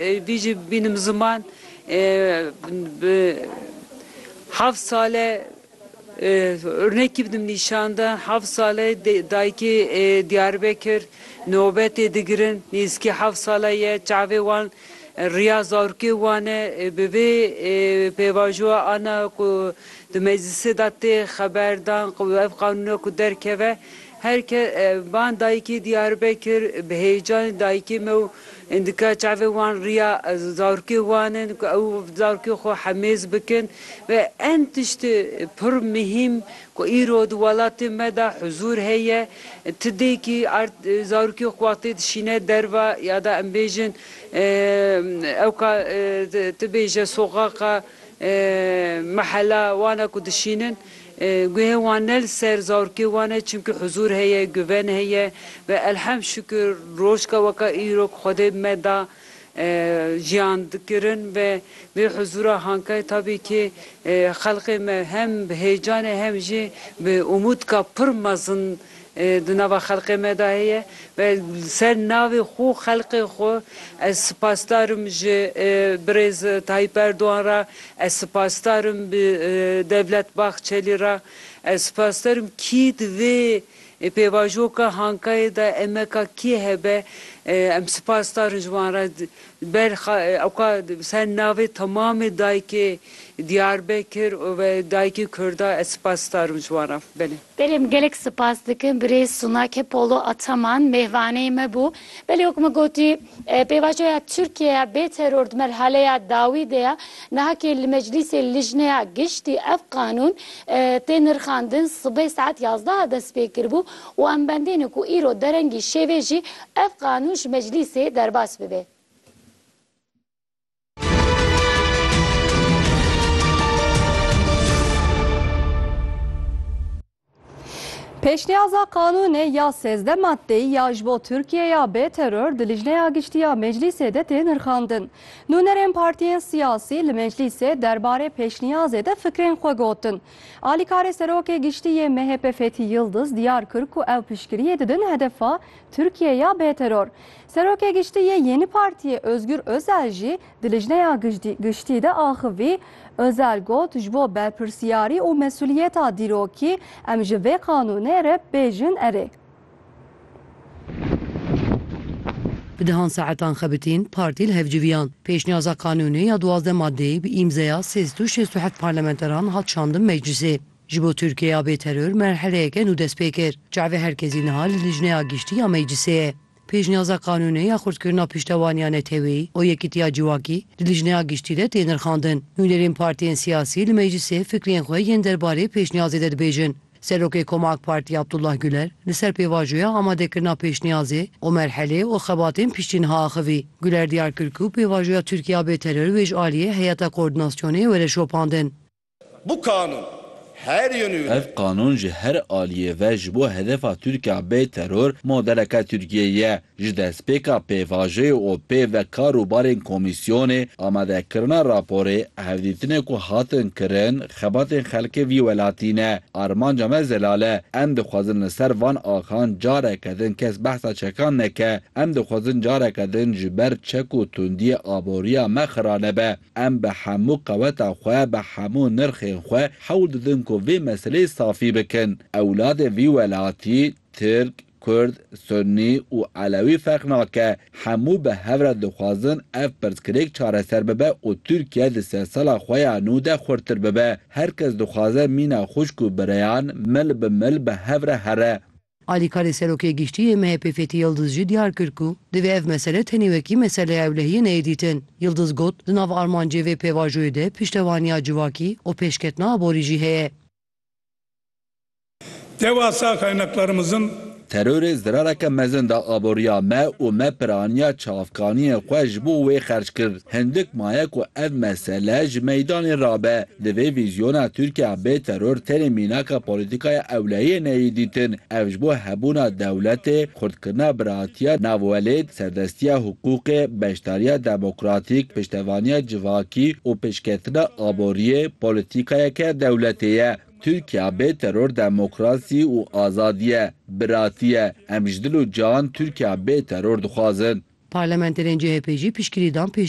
Vî jî bînim ziman bi heft sale urnekî bidim nîşan de. Heft sale dayikê Diyarbekir nobetê digirin. Nêzîkî heft sale ye. Çavê wan riya zarokê wan e. Bi vê pêvajoya ana ku di meclîsê de tê xeber dan ku ev qanûna ku derkeve her kes van dayikê Diyarbekir bi hêcanê dayikê me û Em dike çavê wan riya zarokê wan in ku ew zarokê xwe hemêz bikin ve em tiştê pir mihîm ku îro di welatê me de huzûr heye ti dêkî erd zarokê xwe tê dişîne derve ya da em bêjin ew ka ti bêje soxaqa mehela wan e ku dişînin Guhê wan ne li ser zarokê wan e çimkî huzûr heye, guven heye ve elhem şikir rojka weka îro ku Xwedê bi me da jiyan dikirin ve vê huzûra hankayê tabî kî xelkê me hem bi hêcanê hem jî bi umûdka pir mezin di nava xelkê me de heye ve li ser navê xwe û xelkê xwe ez sipasdar im ji birêz Tayyîp Erdogan re, ez sipasdar im bi Devlet Bahçelî re, ez sipasdar im kî di vê pêvajoka Hankayê de emeka kê hebe em sipasdar in ji wan re. Ber xwe ewka bi ser navê temamê dayikê Diyarbekir û ve dayikê Kurda ez spas darim ji wan re. Belê. Belê em gelek spas dikin birêz Sunake Polo Ataman mêvanê me bû. Belê wek me gotî pêvajoya Tirkiyeya bê teror di merhaleya dawî de ye. Nahakê li Meclîsê Lijneya Giştî ev qanûn tê nirxandin sibê saet yazdeh a destpêkiribû. û em bendîne ku îro derengî şêvê jî ev qanûn ji meclîsê derbas bibe. Pêşniyaza qanûnê ya sêzdeh maddeyî ya ji bo Tirkiye ya bê teror di Lijneya Giştî ya Meclîsê de tê nirxandin. Nûnerên partiyên siyasî li meclîsê derbarê pêşniyazê de fikrên xwe gotin. Alîkarê Serokê Giştî yê MHP Fethî Yildiz diyar kir ku ew piştgiriyê didin hedefa Tirkiyeyê ya bêteror. Serokê Giştî yê Yeni Partiyê Ozgur Ozel jî di lijneya giştî de axivî. Ozel got, Ji bo berpirsiyarî û mesuliyeta dîrokî em ji vê qanûnê re bêjin erê. Bi dehan saetan xebitîn partî li hev civiyan. Pêşniyaza kanûnê ya duwazdeh madeyê bi îmzeya sê sed û şêst û heft parlamenteran hat şandin meclîsê. Ji bo Tirkiyeya bê teror merheleyeke nû dest pê kir. Çavê herkesî niha li lijneya giştî ya meclîsê ye. Pêşniyaza kanûnê ya xurtkirina piştevaniya neteweyî û yekîtiya civakî di lijneya giştî de tê nirxandin. Nûnerên partiyên siyasî li meclîsê fikrên xwe yên derbarê pêşniyazê de dibêjin. Serokê Koma AK Partî Abdullah Guler li ser pêvajoya amadekirina pêşniyazê û merhelê û xebatên piştî niha axivî. Guler diyar kir ku pêvajoya Tirkîya bê teror wê ji aliyê Heyeta Koordinasyonê were şopandin. Bu kanun her yönüyle. Ev qanun ji her aliyê ve ji bo hedefa Tirkîya bê teror modeleke Tirkîyeyê ye. Ji destpêka pêvajoyê û pê ve kar û barên komîsyonê, amadekirina raporê, hevdîtinê ku hatin kirin, xebatên xelkê vî welatî ne. Armanca me zelal e. Em dixwazin li ser van axan careke din kes behsa çekan neke. Em dixwazin careke din ji ber çek û tundiyê aboriya me xira nebe. Em bi hemû qeweta xwe, bi hemû nirxên xwe hewl didin ku vê meseleyê safî bikin. Ewladên vî welatî, Tirk, Kurd, Sunnî û Elewî ferq nake, hemû bi hev re dixwazin ev pirsgirêk çareser bibe û Tirkiye di sedsala xwe ya nû de xurttir bibe. Her kes dixwaze mîna xwişk û bireyan mil bi mil bi hev re here. Alîkarê Serokê Giştî yê MHP'ê Fêthî Yildiz jî diyar kir ku divê ev mesele tenê wekî meseleya ewlehiyê neyê dîtin. Yildiz got, Di nav armancê vê pêvajoyê de piştevaniya civakî û pêşketina aborî jî heye. Dewasa kaynaklarımızın. Terorê zirareke mezin da aboriya me û me piraniya çavkaniyên xwe ji bo wê xerc kir. Hindik maye ku ev mesele ji meydanê rabe. Di vê vîzyona Tirkiya bê teror tenê mînaka polîtîkaya ewlehiyê neyê dîtin. Ev ji bo hebûna dewletê, xurtkirina biratiya navwelêt, serdestiya hiqûqê, beşdariya demokratîk, piştevaniya civakî û pêşketina aboriyê polîtîkayeke dewletê ye. Tirkiya bê teror demokrasî û azadî ye, biratî ye. Em ji dil û can Tirkiya bê teror dixwazin. Parlamenterên CHP'ê jî piştgirî dan pêşniyareke